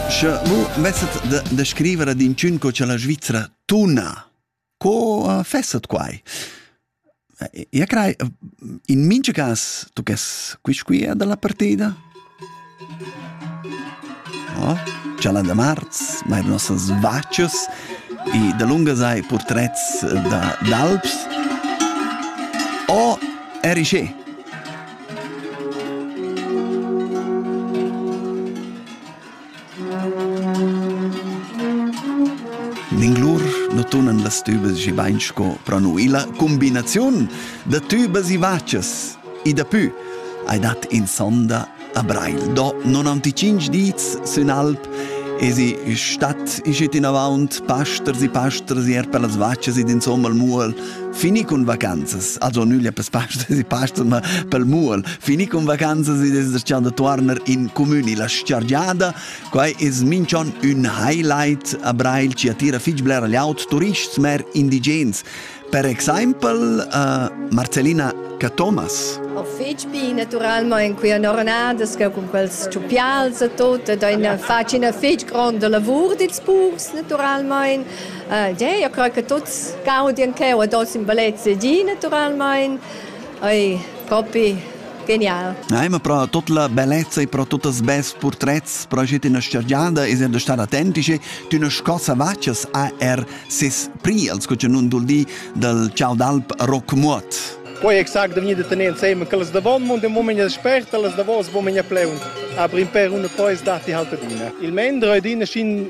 Sche mu vesset da, da scriver ad inchün co cha la Svizra tuna, co uh, fesset quai? Io crei, in mincha cas tuccas quist qui dalla partida? Oh, c'è la da marz, ma eran nossas vaccias e da lunga sai portrets da d'alps. Oh, eri sche. Minglur nu tunan las tübas schi bain sco pro nu illa cumbinaziun da tübas e vachas. E dapü hai dat in sonda a Breil. Do 95 dits sün alp Esi stat ischet inavaunt pasters e pasters er per las vachas ed insomma al mual Fini cun vacanzas, also nüglia per pastas e pastas, ma pel muol. Fini cun vacanzas ed es da tuorner in comüni la sciargiada. Quai es minchon ün highlight a Brail chi attira fich bler aut turists, mer indigens. Per exaimpel uh, Marcelina Cathomas. O fich bi naturalmaing qui an ornadas che cun quels chupials e tot ed ein facin fich gronda lavur dils purs naturalmaing Ja, io crei che tuts ca odien cheu ad oz in bellezia gi naturalmein. Ei propi genial. Ei ma pro tot la bellezza e pro tutt els best portrets proget in stergiada e sind star autentici tu na scossa vaccias a er sis priels co nun dul di dal ciao d'alp Rockmuot. Poi exact da venir da tenere insieme che les davon mund e moment espert e les davos wo men ja pleun aber in per una pois dati halt adina il mendre adina schin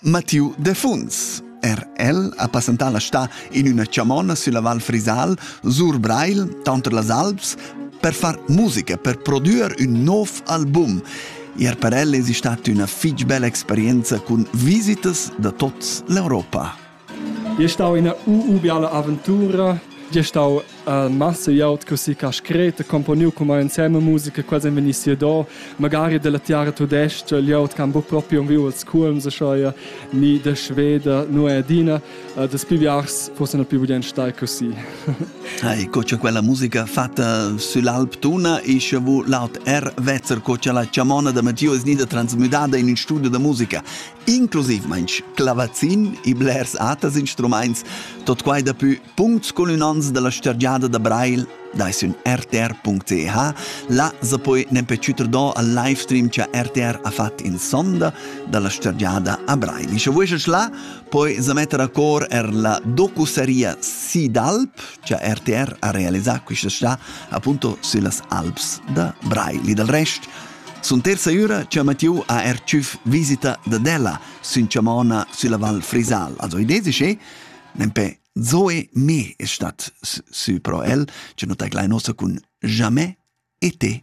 Mattiu Defuns. Er el ha passentà la stà in üna chamonna sülla Val Frisal, sur Breil, tanter las Alps, per far musica, per prodüer ün nov album. Er per el es stat üna fich bella experienza cun visitas da tots l'Europa. È stau ina ubiala aventura, è stau massa iot così ca scret e componiu come insieme musica quasi vegni sia do magari della tiara tudesca l'iot can bu proprio un viu als culms schoi ni de sveda nu è adina das piviars possono più bien stai così Hai co c'è quella musica fatta sull'Alp Tuna e che vu laut R Vezzer co c'è la chamona da Matteo è nida transmutata in un studio da musica inclusiv meinch clavazin e blers atas instruments tot quai da più Puncts cun ün ans da la stergiada da Brail dai sün rtr.ch. Là sa poi nempe chüter do al livestream cha RTR ha fat in sonda da la stergiada a Brail. Scha vueschas là, poi sa metter a cor er la docuseria Sea d'Alp, cha RTR ha realisà quist'està appunto süllas Alps da Brail. Dal rest sun terza üra cha Mathieu ha er tschüf visita da della sün chamona sülla Val Frisal. Also idee es che Nempe Zoe me è stat sü pro el, che non te glai nosa cun jamais e te.